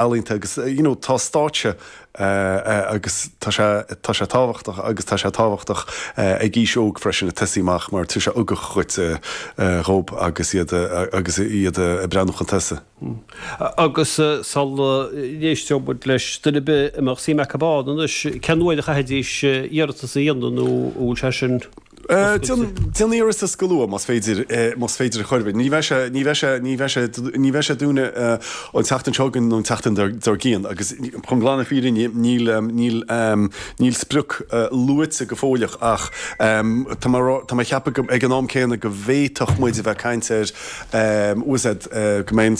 ealaíonta agus you know tá stáitse agus tá sé tá sé tábhachtach agus tá sé tábhachtach ag aois óg freisin ag tosaí amach mar tugann sé ugach dhuit dhób agus iad agus iad ag breathnú chun tosaigh. Agus sula n-éistfidh muid leis duine ar bith a mbeadh suim acu ann anois, cén uair a chaithfidís iarratas a dhéanamh nó an bhfuil sé sin? Déan iarratas go luath más féidir, más féidir a chur i bhfeidhm. Ní bheidh sé, ní bheidh sé, ní bheidh sé, ní bheidh sé dúnta an tseachtain seo chugainn nó an tseachtain dár gcionn agus chun glan na fírinne a rá níl, níl, níl sprioc luaite go fóilleach ach tá, tá mé ag ceapadh ag an am céanna go bhféadfadh muid a bheith ag caint ar you know go mbeidh an,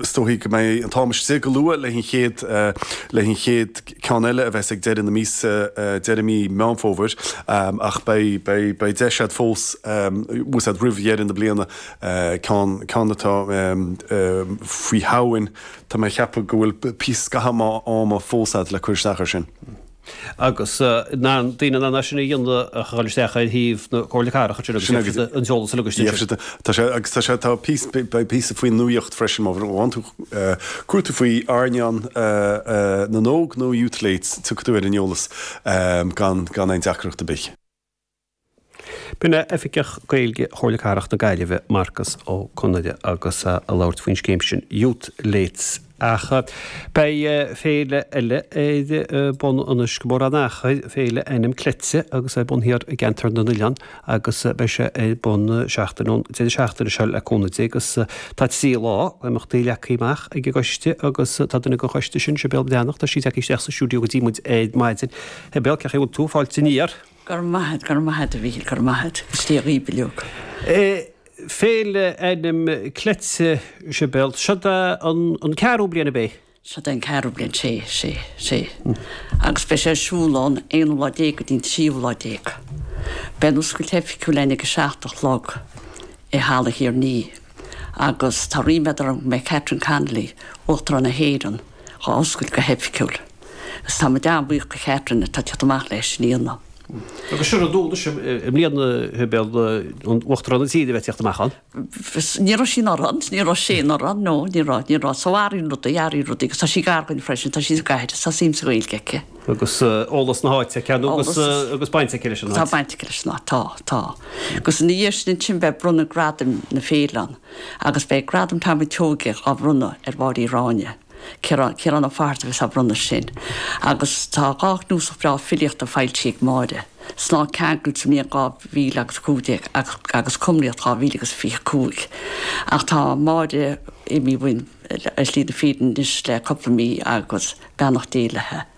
is dóichí go mbeidh an t-am istigh go luath le an chéad, le an chéad. ceann eile a bheas ag deireadh na míosa, deireadh mí Meán Fómhair, ach beidh deis agat fós ansúd roimh dheireadh na bliana ceann, ceann atá faoi Shamhain. Tá mé ag ceapadh go bhfuil píosa, scaitheamh maith ama fós agat le cur isteach ar sin. Agus na daoine in ann é sin a dhéanamh, a chaitheamh isteach ar shuíomh na Comhairle Cathrach, agus sin agus an t-eolas a ligean isteach. Agus tá sé, tá píosa, beidh píosa faoi ar an nuaíocht freisin, má bhaineann tú. Cuartú faoi airneán na n-óg nó Youth Late tiocfaidh tú ar an eolas gan aon deacracht ar bith. B'in é Oifigeach Gaeilge Chomhairle Cathrach na Gaillimhe, Marcus Ó Conaire, agus é ag labhairt faoin scéim sin, Youth Late, ach beidh féile eile ar bun anois gan mórán achair, Féile Ainm Cleite, agus é ar bun thiar i gCeantar na nOileán, agus beidh sé ar bun seachtain ón deireadh seachtaine seo le cúnamh Dé agus tá trí lá d'imeachtaí leagtha amach ag an gcoiste agus tá duine den choiste sin, Sibéal Breathnach, tá sí ag teacht isteach sa stiúideo go dtí muid ar maidin. A Shibéal, cé chaoi a bhfuil tú? Fáilte aniar! Go raibh maith agat, go raibh maith agat, a Mhíchíl, go raibh maith agat. Is diabhail liom é. Féile Ainm Cleite, Sibéal. Seo an ceathrú bliain, ab é? Seo í an ceathrú bliain, 'sé, 'sé, 'sé, agus beidh sé ar siúl ón aonú lá déag go dtí an tríú lá déag. Beidh an oscailt oifigiúil ann ag a seacht a chlog i Halla Thír an Fhia agus tá ríméad orm go mbeidh Catherine Connolly, Uachtarán na hÉireann, á oscailt go hoifigiúil. Is tá muid an-bhuíoch do Chatherine atá ag tíocht amach leis sin a dhéanamh. Agus sórt rud ann féin i mbliana Uachtarán na tíre a bheith ag tíocht amach ann. Nach rud é sin ann, rud é sin ann, no, ní raibh, ní raibh. So airím rudaí, airím rudaí, agus tá sí gar dhuinn freisin, tá sí sa gcathair, tá suim sa Ghaeilge aici. Agus eolas na háite aici, nó agus, agus baint aici leis an áit. Tá baint aici leis an áit, tá, tá. Agus ina dhiaidh sin ansin beidh bronnadh gradaim na féile ann, agus beidh Gradam Tom a' tSeoighe á bhronnadh ar Mháirín Ráinne. Ciarán, Ciarán Ó Fátharta a bheas á bhronnadh sin. Agus tá dhá chnuasach bhreá filíochta foilsithe ag Máire, Snáth Ceangailte sa mbliain 2000 agus 15 agus agus Cumraíocht 2000 agus 25. Ach tá Máire imithe uainn ar shlí na fírinne anois le cúpla mí agus beannacht Dé léithi.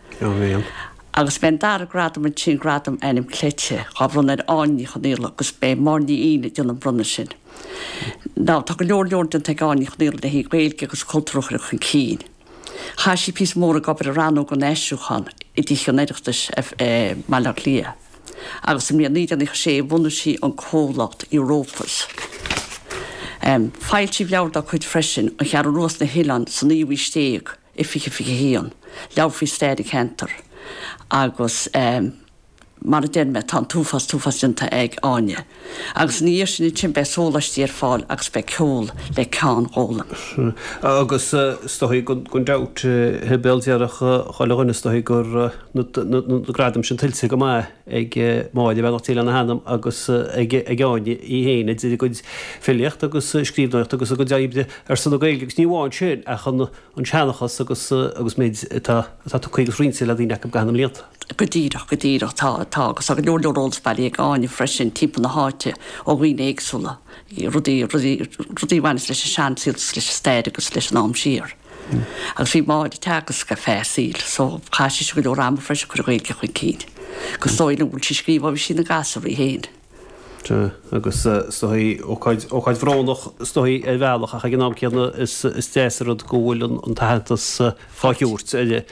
Agus beidh an dara gradam ansin Gradam Ainm Cleite, á bhronnadh ar Áine Ní Chonghaile agus beidh Máire Ní Eidhin ag déanamh an bronnadh sin. Now, tá go leor leor déanta ag Áine Ní Chonghaile le haghaidh Gaeilge agus cultúr a chur chun cinn. Chaith sí píosa mór ag obair i Rannóg an Aistriúcháin i dTithe an Oireachtais i mBaile Átha Cliath agus sa mbliain 1996 bhunaigh sí an comhlacht Europus. Foilsíodh leabhar dá cuid freisin, An Cheathrú Rua is na hOileáin sa naoú haois déag. i 2021, leabhar faoi stair an cheantair agus mar a deir mé tá an t-uafás, t-uafás déanta ag Áine agus ina dhiaidh sin ansin beidh sólaistí ar fáil agus beidh ceol le Ceann Gólaim. Agus is dóichí gan dabht, bhuel déarfadh chuile dhuine is dóichí go raibh na gradaim sin tuillte go maith. ag Máire beannacht Dé lena hanam agus ag Áine í féin, idir a gcuid filíochta agus scríbhneoireachta agus a gcuid oibre ar son na Gaeilge agus ní amháin sin ach an seanchas agus agus an méid atá atá tugtha agus roinnte le daoine acu i gcaitheamh na mblianta. Go díreach, go díreach. Tá, tá agus tá go leor leor eolas bailithe ag Áine freisin timpeall na háite ó dhaoine éagsúla, rudaí, rudaí, rudaí a bhaineas leis an seansaol agus leis an stair agus leis an am siar. Agus bhí Máire ag teagasc ar feadh a saoil so chaith sise go leor ama freisin ag cur an Ghaeilge chun cinn. Agus is dóigh liom go bhfuil sí ag scríobh ó bhí sí ina gasúr í féin. Sea. Agus is dóigh, ócáid bhrónach is dóigh ar bhealach ach ag an am céanna is deas an rud go bhfuil an t-aitheantas á thabhairt di